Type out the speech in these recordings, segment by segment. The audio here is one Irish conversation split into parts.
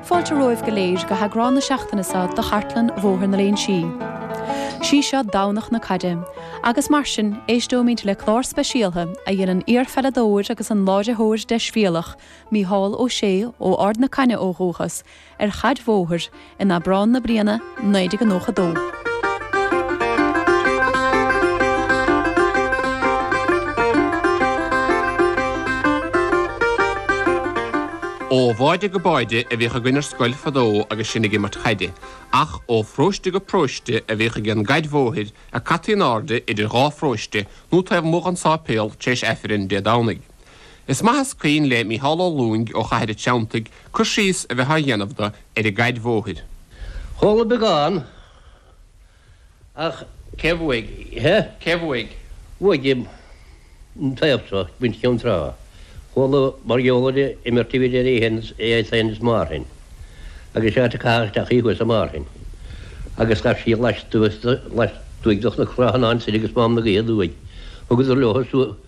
Fáilte romhaibh go léir go heagrán na seachtaine seo de Chartlann Bhóthar na Léinsí. Sí seo Domhnach na Caide, agus mar sin, éisteoimid le clár speisialtha a dhein an iarpheileadóir agus an láithreoir deisbhéalach Mícheál Ó Sé, ó Ard na Caithne ó dhúchas, ar chaid bhóthair, in Aibreán na bliana 1992. Ó bháide go báide a bhíodh againn ar scoil fadó agus sinn ag imirt chaide, ach ó phróiste go próiste a bhíodh ag an gcaid bhóthair a caití in airde idir dhá phróiste nó taobh amuigh den sáipéal tar éis aifreann Dé Domhnaigh. Is maith is cuimhin le Mícheál Ó Lúing ó Chathair a' Treanntaigh cur síos a bheith á dhéanamh do ar an gcaid bhóthair. Chuala beagán ach cé bhuaigh é? Cé bhuaigh? Bhuaigh an taobh seo, muintir Cheann Trá. Chuala mar gheall ar imirt idir iad féin is Márthain agus is é áit a caitheadh isteach í thuas i Márthain agus ghabh sí lastuas lastuaidh de chnocán an tSill agus Mám na Gaoithe aduaidh. Thugadar leo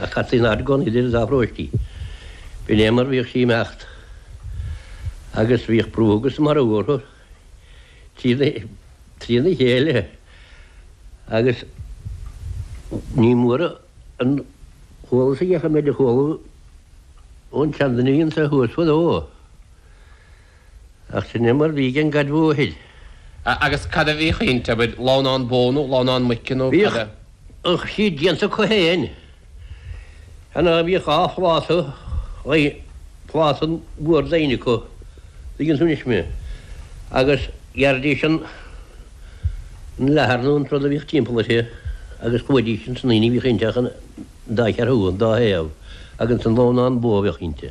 Ach cad faoin argóint idir an dá phróiste? B'in é mar bhíodh sí ag imeacht. Agus bhíodh brú agus marú orthu trína chéile agus ní mór an t-eolas agam ach an méid a chuala ón tseanduine anso thuas fadó. Ach sin é mar bhí ag an gcaid bhóthair. Agus cad a bhíodh inti? An bhfuil lamhnán bó nó lamhnán muice nó cad é? Bhíodh siad déanta acu féin. An ea? Bhíodh dhá phláta dhaoine, pláta mhór daoine acu, an dtuigeann tú anois mé, agus ghearrfaidís an leathar nó an rud a bhíodh timpeall uirthi agus chuiridís ansan aoinne a bhíodh inti ach an dá cheathrú, an dá thaobh, agus an lamhnán bó a bhíodh inti.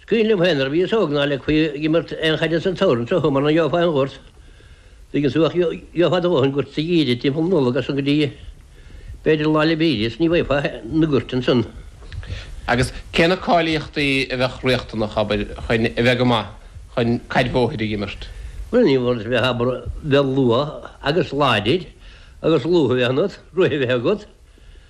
Is cuimhin liom féin nuair a bhíos óg ná leigfí ag imirt aon chaide sa tsamhradh anseo mar ná gheobhfá aon ghort. Tuigeann tú ach gheobhfá do dhóthain goirt sa Gheimhreadh timpeall Nollag as san go dtí b'fhéidir Lá 'le Bríghde is ní bhfaighfeá na goirt ansan. Agus cé na cáilíochtaí a bheadh riachtanach, abair, chun a bheith go maith chun caid bhóthair a dh'imirt? Bhuel, níorbh fholáir bheith, abair, bheith luath agus láidir agus lúth a bheith ionat, rith a bheith agat,